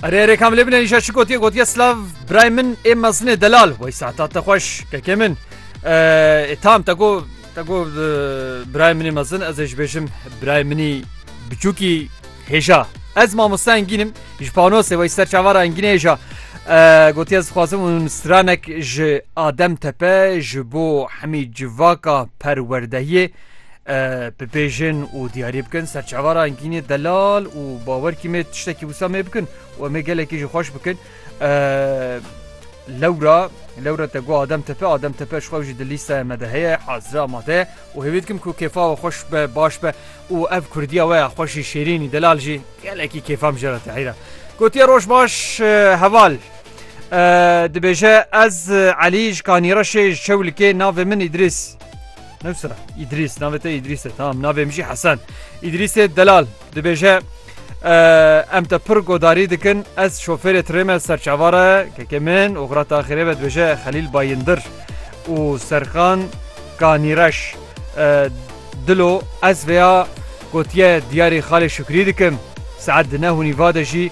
Erê erê kamilê bine îşa çi gotiye gotiye slav birayê min ê mezinê delal wey saeta te xweş kekê min ê tam te got te got birayê min ê mezin ez ê ji bêjim birayê minî biçûkî hêja ez mamosta engînim ji panosê wey ser çavara engînê hêja gotiye ez dixwazim û stranek ji adem tepe ji bo hemî civaka perwerdehiyê Bibêjin û diyarî bikin ser çava re Engînê Delal û bawer kî mê tiştekî wisa mê bikin û em ê gelekî jî xweş bikin. Lewra lewra te got Adem Tepe Adem Tepe ji xwe jî di lîsteya me de heye hazire amade ye û hêvî dikim ku kêfa we xweş be baş be û ev kurdiya we ya xweşî şêrînî delal jî gelekî kêfam jê re tehîra. Gotiye roj baş heval. Dibêje ez Elî ji Kanîreşê ji Çewlikê navê min Îdrîs. Newsira Îdrîs navê te Îdrîs e tamam navê min jî Hesen Îdrîsê delal dibêje em te pir godarî dikin ez şofêrê tirê me serçavare kekê min û xira taxirê ve dibêje Xelîl Bayindir û Serkan Kanîreş dilo ez vêya gotiye diyarê xalê Şukrî dikim saet di ne hûnî vade jî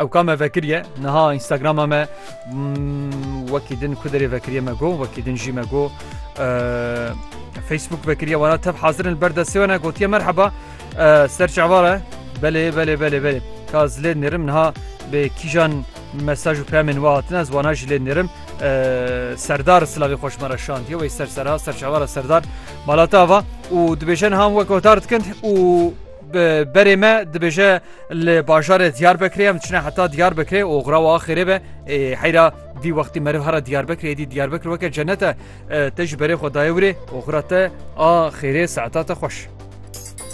Ew ka me vekiriye niha Instagrama me wekî din ku derê vekiriye me got wekî din jî me got Facebook vekiriye wara tev hazirin li ber destê we ne gotiye merheba ser çavare belê belê belê belê ka zilê nêrim niha bê kîjan mesaj û pemên we hatine ez wana jî lê nêrim serdar silavê xweş me re şandiye wê ser sera serçavara serdar malata ava û dibêjin ham wek gotar dikin û Bi berê me dibêje li bajarê Diyarbekirê em diçine heta Diyarbekirê û xira wa xêrê be ê heyra dî wextî meriv hera Diyarbekirê dî Diyarbekir weke cennet e te ji berê xwe dayê wirê û xira te a xêrê saeta te xweş.